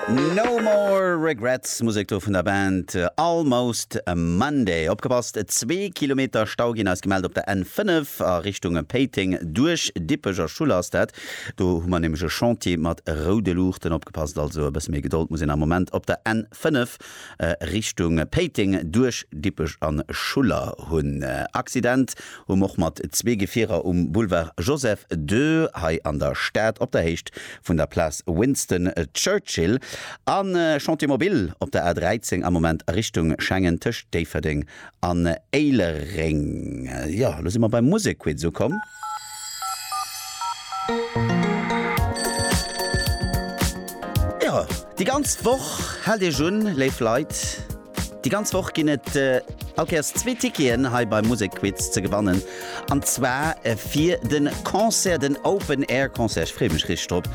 No More Regrets, Musek do vun der Band Almost Monday. Opgepasst, zwee Kilometer Stau ginn eis gemellt op der N5 a Richtung Péiteng. Duerch Dippech a Schuller ass dat. Do hu mer nämlech e Chantier mat roude Luuchten. Opgepasst also, e bësse méi Gedold muss een am Moment op der N5. Richtung Péiteng duerch Dippech an Schuller hunn. Accident um och mat zwee Gefierer um Boulevard Joseph ii hei an der Stad op der Héicht vun der Place Winston Churchill an Chantier Mobil op der A 13 am Moment a Richtung Schengen tëscht Déifferdeng an Éilereng. Jo, elo si mer beim Musekquiz ukomm. Jo, déi ganz Woch, haalt Iech un, léif Leit, déi ganz Woch ginn et allkéiers zwee Ticketen hei beim Musekquiz ze gewannen. An zwar fir de Concert, den Open Air Concert, ech freeë mech richteg drop,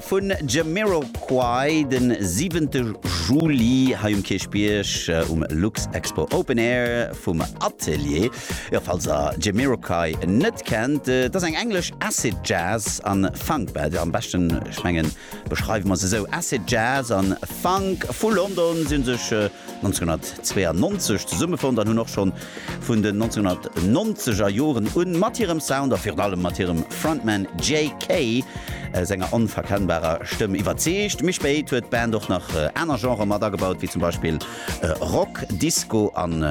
vu Jamiroquai de siwente Juli hei um Kierchbierg um Luxexpo Open Air vum Atelier. Jo, falls der Jamiroquai net kennt, dat ass eng englesch Acid Jazz an Funk Band. Jo, am beschten, ech mengen, beschreiwe mer se esou, Acid Jazz an Funk vu London. Si hu sech 1992 zesummefonnt an hunn och schonn Vun den 1990 er Joren un, mat hirem Sound a virun allem mat hirem Frontman JK senger onverkennbarer Stëmm iwwerzeegt. Méi spéit huet d'Band och nach aner Genrë mat agebaut, wéi zum Beispill Rock, Disco an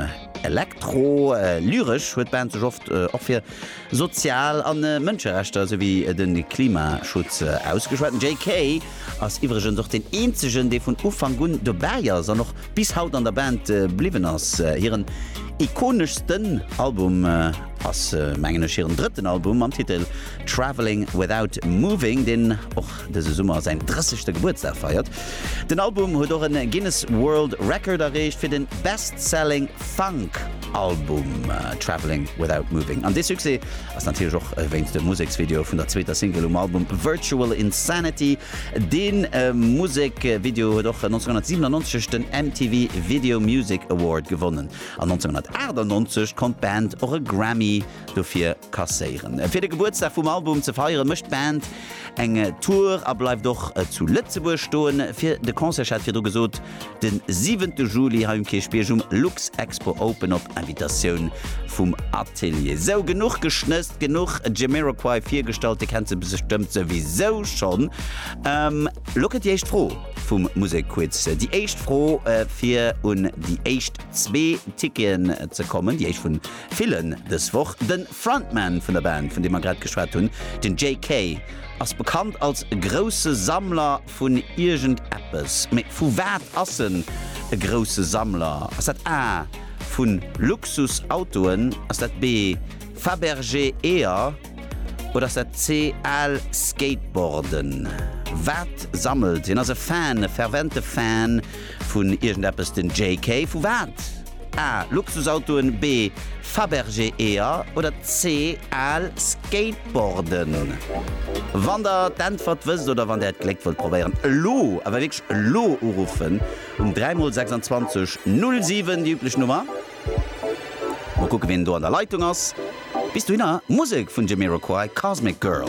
Elektro. Lyresch huet d'Band sech oft och fir Sozial a Mënscherechter souwéi de Klimaschutz ausgeschwat. JK ass iwwregens och deen eenzegen dee vun Ufank un dobäi ass an och bis haut an der Band bliwwen ass. Hiren ikoneschsten Album ass mengen ech hiren drëtten Album mam Titel Travelling Without Moving, deen och dëse Summer säin 30. Gebuertsdag feiert. Den Album huet och e Guinness World Record erreecht fir de Best Selling Funk. Album Travelling Without Moving. An dee Succès ass natierlech och wéinst dem Museksvideo vun der zweeter Single um Album Virtual Insanity. Dee Musekvideo huet och 1997 den MTV Video Music Award gewonnen an 1998 konnt d'Band och e Grammy dofir kasséieren. Fir de Gebuertsdag vum Album ze feieren, mécht d'Band eng Tour a bleift och zu Lëtzebuerg stoen. Fir de Concert, ech hat et virdru gesot, Den siwente Juli hei um Kierchbierg um Luxexpo Open op Invitatioun vum Atelier. Sou, genuch geschnësst, genuch Jamiroquai virgestallt, dir kennt se bestëmmt souwisou schonn. Lo kënnt déi éischt Fro vum Musekquiz. Déi éischt Fro fir un déi éischt zwee Ticketen ze kommen, déi éischt vun villen dës Woch. De Frontman vun der Band, vun deem mer grad geschwat hunn, den Jay Kay, ass bekannt als grousse Sammler Vun iergend eppes. Mee vu wat ass en e grousse Sammler? Ass dat A, Vu Luxusautoen? Ass dat B, Fabergé-Eeër? Oder ass dat C, Al Skateboarden? Wat sammelt hien? Ass e Fan, e fervente Fan vun iergend eppes den JK? Vu wat? A, Luxusautoen, B, Fabergé Eeër oder C, al Skateboarden? Wann der d'Äntwert wësst oder wann där d'Gléck wëllt probéieren, elo, awer wierklech elo uruffen um 3 mol 26 07, déi üblech Nummer. Mol kucke wien do an der Leitung ass. Bis dohinner Musek vun Jamiroquai, Cosmic Girl.